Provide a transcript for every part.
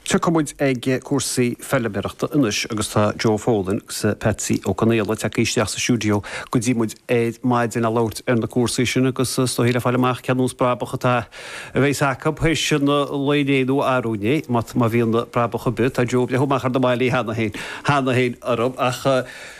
Tiocfaidh muid ag cúrsaí feiliméarachta anois agus tá Joe Folan agus Patsy Ó Conaola tagtha isteach sa stiúideo go dtí muid ar maidin le labhairt ar na cúrsaí sin agus is dóigh le fáil amach cén nós brabach a bheidh acu théis an lae inné nó arú-inné, má bhíonn brabach ar bith. Tá Joe ag breathnú amach ar na mballaí cheana féin orm ach.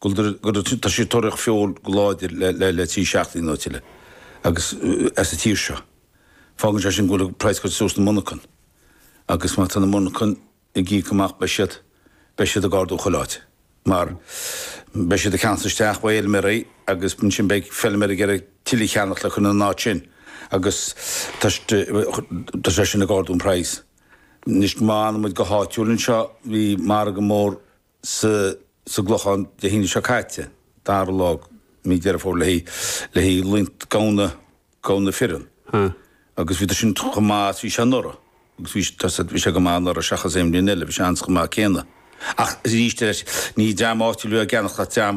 go dtí tá siad ag tóraíocht feoil go láidir le trí seachtaine nó tuilleadh agus as an tír seo. Fágann sé sin go bhfuil praghas curtha suas sna monarchain agus má tá na monarchain ag íoc amach beidh siad beidh siad ag ardú chuile áit mar beidh siad ag ceannacht isteach ó fheilméaraí agus ansin beidh feilméaraí ag iarraidh tuilleadh a cheannacht le cur ina n-áit sin agus tá tá sé sin ag ardú an praghas. Anois má fhanaimid go háitiúil anseo bhí margadh mór sa gClochán Dé hAoine seo caite, 2ú lá mí Deireadh Fómhair le haghaidh roinnt gamhna fireann agus bhí sin chomh maith is bhí sé anuraidh agus bhí sé, bhí sé go maith anuraidh seachas aon bhliain eile, bhí sé an chomh maith céanna ach arís eile ní dream áitiúil a bhí á gceannacht ach dream,